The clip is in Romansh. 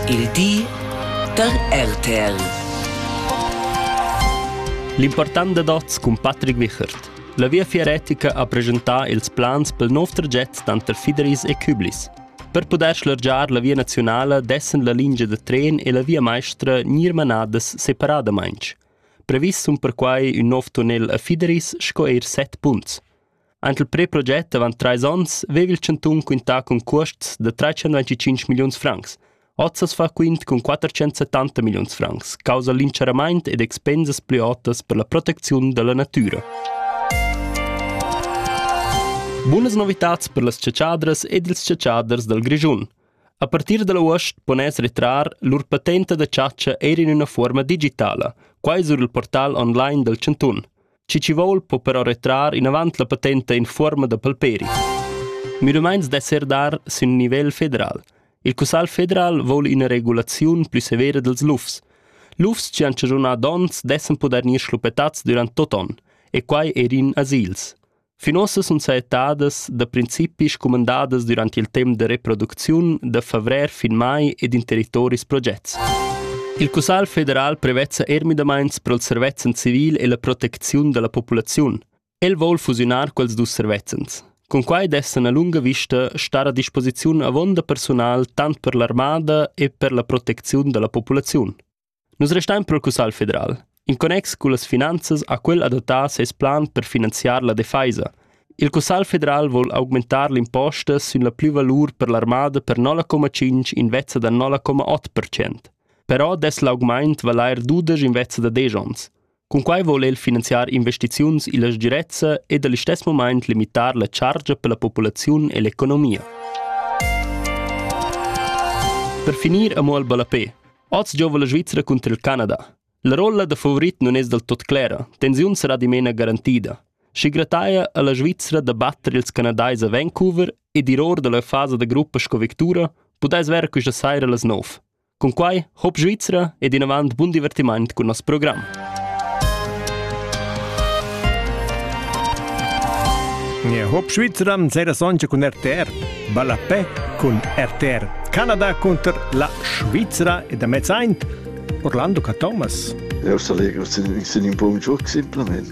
Il di da RTL. L'important dad oz cun Patrick Wichert. La Viafier retica ha presentà ils plans pel nov traget tanter Fideris e Küblis. Per pudair schlargiar la via naziunala dessen la lingia da tren e la via maestra gnir manadas separadamaing. Previs sun perquai ün nov tunnel a Fideris sco eir set punts. Aint il preproget avant trais ons veva il chantun quintà cun cuosts da trais-cent milliuns francs. Oz as fa quint cun quattrecentosettanta milliuns francs causa l'incharamaint ed expensas plü otas per la protecziun da la natüra. Bunas novitats per las chatschadras ed ils chatschaders dal Grischun. A partir da l'avuost pon es retrar lur patenta da chatscha eir in üna fuorma digitala. Quai sur il portal online dal chantun. Chi chi voul po però retrar inavant la patenta in fuorma da palperi. Müdemaints d'esser dar sün nivel federal. Il Cussal federal voul ina regulaziun plü severa dels lufs. Lufs chi han chaschunà dons dessan poder gnir schluppetats durant tot on, e quai eir in asils. Finosas sun saettadas da principi scumandadas dürant il temp da reproducziun da favrer fin mai ed in territoris progets. Il Cussagl federal prevezza eir müdamaints pro'l servezzan civil e la protecziun da la populaziun. El voul fusiunar quels dus servezzans. Con quai dessan a lunga vista star a disposiziun avonda personal tant per l'armada e per la protecziun da la populaziun. Nus restain pro Cussagl federal. In connex cullas finanzas ha quel adattà seis plan per finanziar la defaisa. Il Cussagl federal voul augmentar l'imposta sün la plüvalur per l'armada per 0,5 invezza da 0,8%. Però dess l'augmaint valair dudesch invezza da desch ons. Cunquai vol el finanziar investiziuns illa sgirezza ed al istess mumaint limitar la chargia per la populaziun e l'economia. Per finir amo al ballapè. Oz giova la Svizra cunter il Canada. La rolla da favorit non es del tot clera, tensiun sarà dimena garantida. Schi grataia a la Svizra da batter ils canadais a Vancouver ed ir or dalla fasa da gruppa sco victura, pudais ver quista saira las 9. Cun quai hop Svizra ed inavant bun divertiment cun nos program. Ja, Hop Schweizer sera soncha cun RTR. Ballapè cun RTR. Canada contro la Svizzera e da mezzaint Orlando Ca Thomas. Eu sa legro sin un po un gioc semplament.